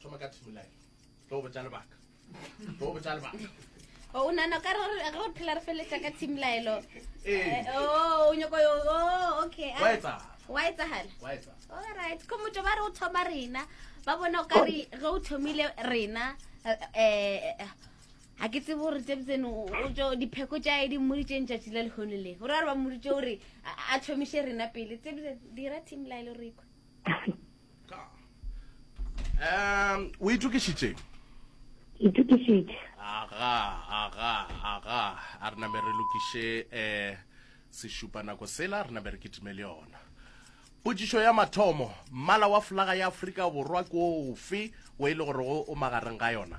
thoma ka thimolae tlo botsa lebaka tlo botsa lebaka o oh, nana ka re re re phela re feletsa ka thimolaelo eh. eh, oh, o nyoko yo o oh, okay wa etsa wa etsa hala wa etsa all right ko motho ba re o thoma rena ba bona o ka re ge o thomile rena eh ha ke tsebo gore tse tseno o tso dipheko tša e di mmoditseng tšatši la lehono le gore a re ba mmoditse gore a thomiše rena pele tse dira thimolaelo rekwa um o itokišitšeng ke itokišitše aga aga aga a re name re lokiše um sešupa nako sela re name re kitime le yona potšišo ya mathomo mmala wa folaga ya aforika borwa ke ofe o e le gorego o magareng ga yona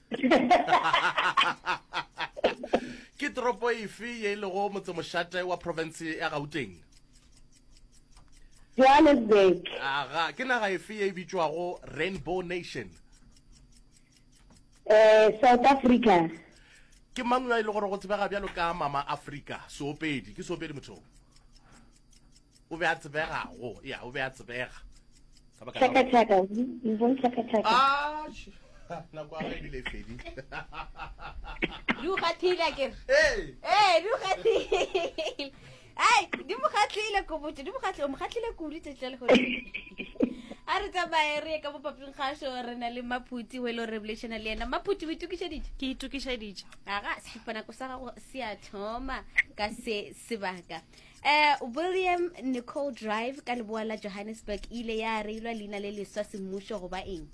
ke toropo efe ye e lego motsemošate wa profense ya gauteng johannesburg aga ke naga efe ye e bitšwago rainbow nation um south africa ke mang yo e le gore go tsebega bjalo ka mama africa seopedi ke seopedi mothong O be a tsebega go, ya, o be a tsebega. Chaka chaka, you won't chaka chaka. Ah, nako ya ebile e fedile. Di o kgathile ke. Hey. Hey, di o kgathile. Ai, di mo kgatlile ko botse, di mo kgatlile, mo kgatlile ko ri tsetle le gore. A re tsamaye re ka bopaping ga sho re na le Maphuti we lo revelation le yena. Maphuti we tukisha dije. Ke tukisha dije. Aga, sipana ko sa go se a thoma ka se sebaka. eh, william nicole drive ka leboa la johannesburg e ile ya reilwa leina le leswa semmušo goba eng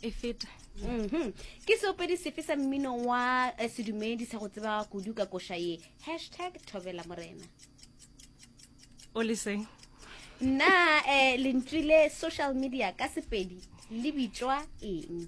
e feta mhm. ke seopedi sefe sa mmino wa eh, sedumedi sa go tseba kudu ka koša ye hashtag thobela morena o leseng nna um lentswi le social media ka sepedi le bitswa eng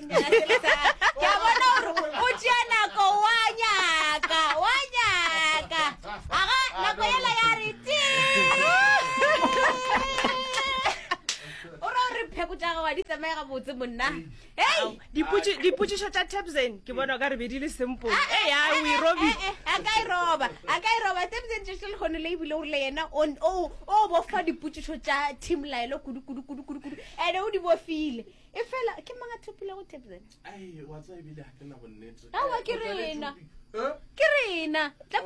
ke a bona gore o tšea nako wa nyaka wa nyaka aga nako ela ya re ti o re o re pheko tša gago ga di tsamaye gabotse monna hei Dipotši- dipotšišo tša tapsen ke bona o ka re be di le simple e ya o e robi Eh, eh, a ka e roba a ka e roba tebsen tšešo le kgone le ebile o rile yena o o- o bofa dipotšišo tša team laelo kudu kudu kudu kudu kudu ene o di bofile e fela ke mang a tlhopilego tebzena awa ke rena ke rena tla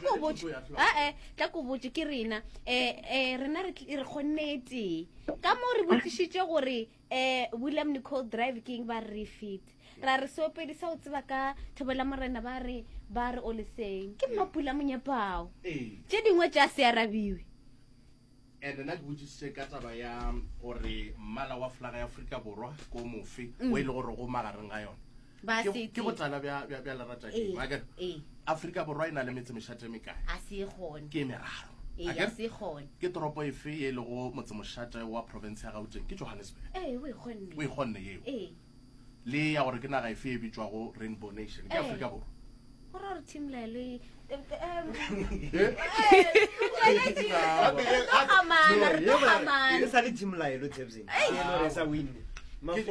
ko botse ae tla ko botse ke rena um rena re kgonne e tee ka moo re botsišitse gore um william nicol drive ke eng ba re refit ra re seopedi sa o tseba ka thobela morena ba re ba re o leseng ke mmapula monyepao tše dingwe tša se arabiwe And nna ke botsisitse ka taba ya gore mmala wa flaga ya Afrika Borwa ko mofe mm. o e le gore go magareng ga yone ba se ke go tsala bya bya bya lerata ke ba ke Afrika borwa ina le metse meshate me kae a se gone ke meraro e ya se gone ke toropo efe e le go motse moshate wa province ya Gauteng ke Johannesburg eh we gone we gone yeo eh le ya gore ke naga efe e bitšwago rainbow nation ke afrika eh. borwa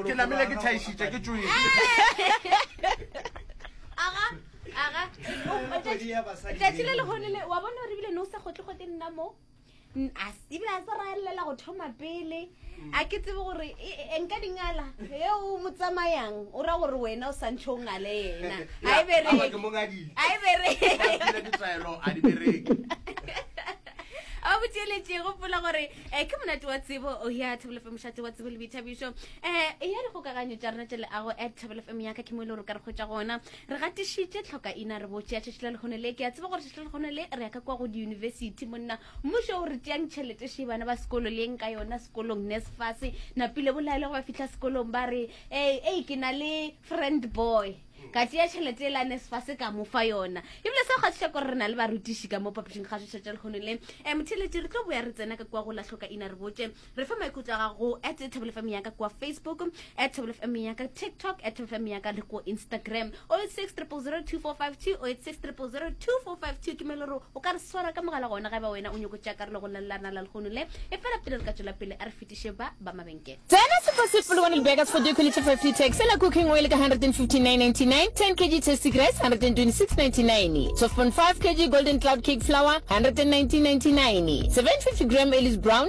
ke namele ke thaešitša ke tsoile tsatsi le legonele wa bona gore ebile ne o sa gotle gote nna mo as ebile a se ra lelela go thoma pele mm. a ke tsebe gore e, e, nka dingala e o mo tsamayang o ra gore wena o santšhe o ngale yena ga e bereke a botšeletše gopola gore um ke monate wa tsebo o oh, ya thebolo fm mošate wa tsebo le boithabišo um e ya dikgokaganyo tša rena tše leago at thebolo fm yaka ke mo e le gore ka re kgwetša gona Re gatišitše tlhokaina, re bo tšea tšatši la lehono le. Ke a tseba gore tšatši la lehono le re ya ka kwa go diyunibesithi. Monna, mmušo o re tšeang tšhelete še bana ba sekolo le eng ka yona sekolong. Nesfas, napile bolaele go ba fihla sekolong ba re, Ei, ei, ke na le friend boy. Ka tšea tšhelete e la Nesfas ka mo fa yona. Ebile seo ga se šako gore re na le barutiši ka mo phapošing ga šoša tša lehono le. Um, Tšhelete, re tlo boya re tsena ka kwa go la tlhokaina re botše re fa maikutlo a gago at thabelo fm yaka kwa facebook at thabelo fm yaka tiktok at thabelo fm yaka le ko instagram 0860002452 0860002452 ke mele gore o ka re swara ka mogala gona ga ba wena o nyoko tša karolo go lalelana la lekgono le e fela pele re ka tswela pele a re fetiše ba ba mabenkele Tena super sweet polokwane lebekers for decollete 50 tax la cooking oil ka 159.99 10 kg tasty grace 126.99 12.5 kg golden cloud cake flour 119.99 750 gram ellis brown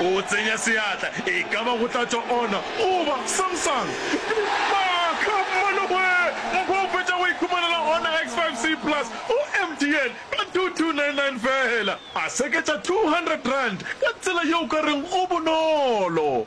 O tsenya seatla, e ka ba go tla tšwa Ona, goba Samsung. Maaka! Mmanogwee! Mokgwa o fetša go ikhumanela Honor X5C Plus go MTN ka 2299 feela. A seketša R200 ka tsela yeo o ka reng go bonolo.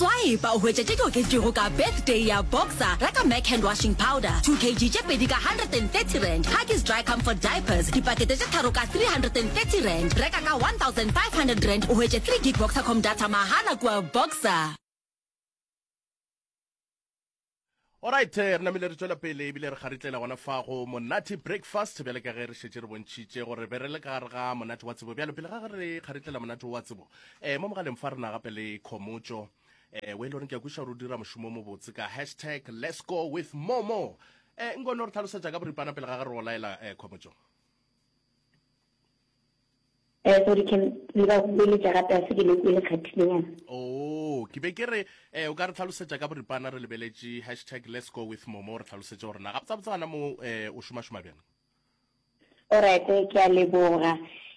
Swipe o hwetše tše di oketšego ka Birthday ya Boxer, reka Mac Hand Washing Powder 2 kg tše pedi ka R130, Huggies Dry Comfort Diapers dipakete tše tharo ka R330, reka ka R1,500 o hwetše 3 gig Boxercom data mahala kua Boxer. Alright, eh, re namile re tswela pele ebile re garitlela gona fa go monate breakfast bjale ka ge re šetse re bontšhitše gore be re le ka gare ga monate wa tsebo bjalo pele ga ge re garitlela monate wa tsebo um mo mogaleng fa rena gape le khomotso um eh, o e le goreng ke ya kweša gore o dira mošomo o mobotse ka hashtag let's go with momo um nkono re tlhalosetša ka boripana pele ga ge re o laela um khomotso Eh, sorry Ken, le ba boeletša gape a se ke le kwele kgathilenyana. Oh, ke be ke re eh o ka re tlhalosetša ka boripana re lebeletše hashtag let's go with momo re tlhalosetše gore na gabotsabotsa gona mo eh o šomašoma bjang. Alright, eh, ke a leboga.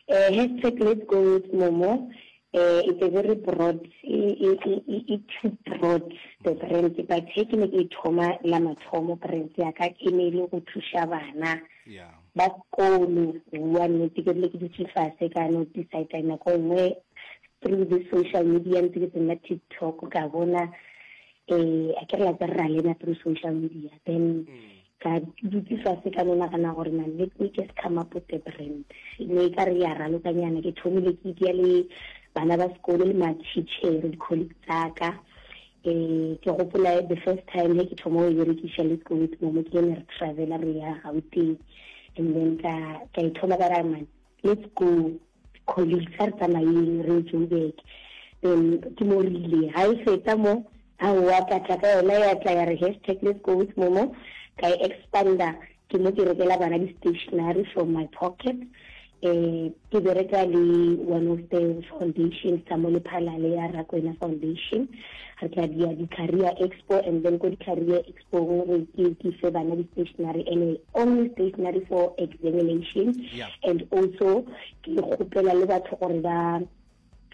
Eh, hashtag let's go with momo eh it's a very broad e, e, e, e, e too broad the brand but he ke ne ke e thoma la mathomo brand ya ka e ne e le go thuša bana Yeah. Ba kolo bua nnete ke rile ke dutše fase ka no decide nako nngwe through this social media ntse ke tsena TikTok ka bona eh a ke re la tsa rra lena through social media then ka dutse fase ka no nagana gore na let me just come up with a brand ne ka re ya ralokanyana ke thomile ke itia le bana ba sekolo le ma teacher di colleague tsaka Ee, ke gopola the first time he ke thoma go e berekiša le ko with momo ke ene re travela re ya gauteng and then ka ka e thoma ka ra man let's go colleagues a re tsamayeng re ye joburg then ke mo rile ga e fetsa mo aowa ka tla ka yona ya tla ya re hashtag let's go with momo ka e expander Ke mo ke rekela bana di stationary from my pocket. Um ke bereka le one of the foundations tsa mo lephalale ya Rakwena Foundation. Re tla dia di-career expo and then ko di-career expo re ke ke fe bana di stationary and only stationary for examination yeah. and also ke kgopela le batho gore ba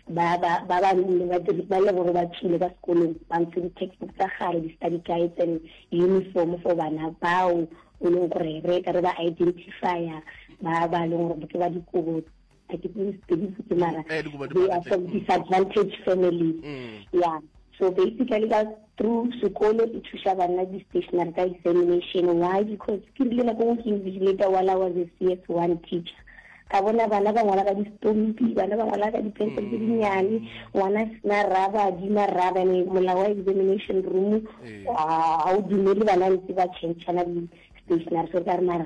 ba ba ba ba le ba dire ba le gore ba tšile ka sekolong ba ntshe di-textbook tsa gare di-study guides and uniform for bana bao e leng gore re ka re ba identifya ba ba leng gore ke ba dikobo a ke tsebisitse mara they are from disadvantage families mm. yeah so basically ba Through sekolo e thuša bana di stationary ka examination. Why? Because ke rile nako ngwe ke invigilator while I was a CS1 teacher. Ka bona bana ba ngwala ka di stompi, bana ba ngwala ka di pencil tse di nyane, ngwana a sena raba, a dima raba, ene molao wa examination room, ha o dumele bana ntse ba change-ana di stationary. So ka re mara,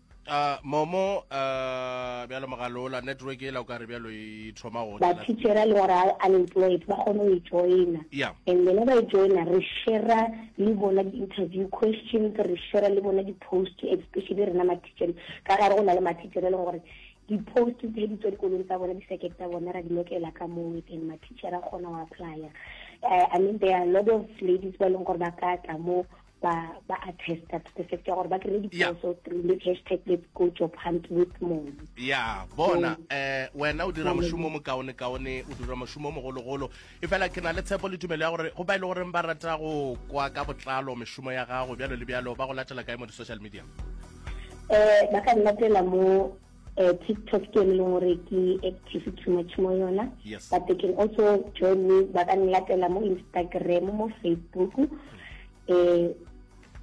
Uh, momo uh, bjalo mogalola network e la o ka re bjalo e thoma go bathitšhera le gore unemployed ba kgone go e joina yeah. and lena ba e joina re shera le bona di-interview questions re shera le bona di-post especially rena mathitšhere ka gare go na le mathitšhere e leng gore di-post tse di tswa dikolong tsa bona di-circuit tsa bona ra di lokela ka moo and mathitšhere a kgona go applya uh, i mean there are a lot of ladies ba e leng gore ba ka tla moo ba ba attesta to the fact ya gore ba kry diposo through le hashtag let's go job hunt with mom ya bona eh wena o dira moshomo mo kaone kaone o dira moshomo mo golo golo e fela ke na le tshepo le tumelo ya gore go ba ile e gore ba rata go kwa ka botlalo moshomo ya gago bjalo le bjalo ba go latela kae mo di social media eh ba ka nna tela mo Uh, TikTok ke le gore ke active too much mo yona yes. but they can also join me ba ka nlatela mo Instagram mo Facebook eh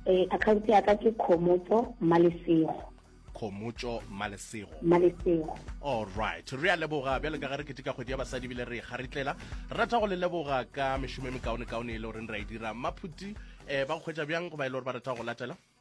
eh account ya ka ke Khomotso Malesego khomotso malesego malesego all right re a leboga bjale ka ga re ketika kgwedi ya basadi bile re e garitlela rata go le leboga ka mešomo e mekaone kaone e le goreng ra e dira maphuti um ba go kgwetsa bjang go ba e le gore ba rata go latela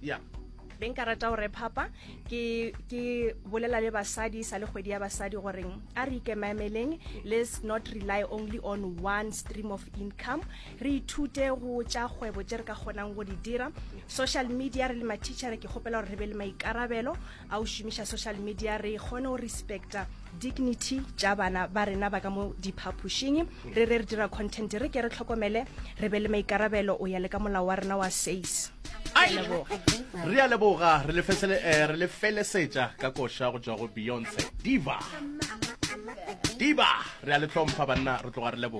ya yeah be nka rata gore phapa ke ke bolela le basadi sa le kgwedi ya basadi goreng a re ikemaemeleng let's not rely only on one stream of income re ithute go tša kgwebo tše re ka kgonang go di dira social media re le matšhitšhere ke kgopela gore re be le maikarabelo a o šomiša social media re kgone go respecta dignity tša bana ba rena ba ka mo diphaphošing re re re dira content re ke re tlhokomele re be le maikarabelo o ya le ka molao wa rena wa says re a leboga re lefesele eh, re lefelesetša ka koša go tšwa go beyonce diva diva re a le hlompha banna re tloga re leboga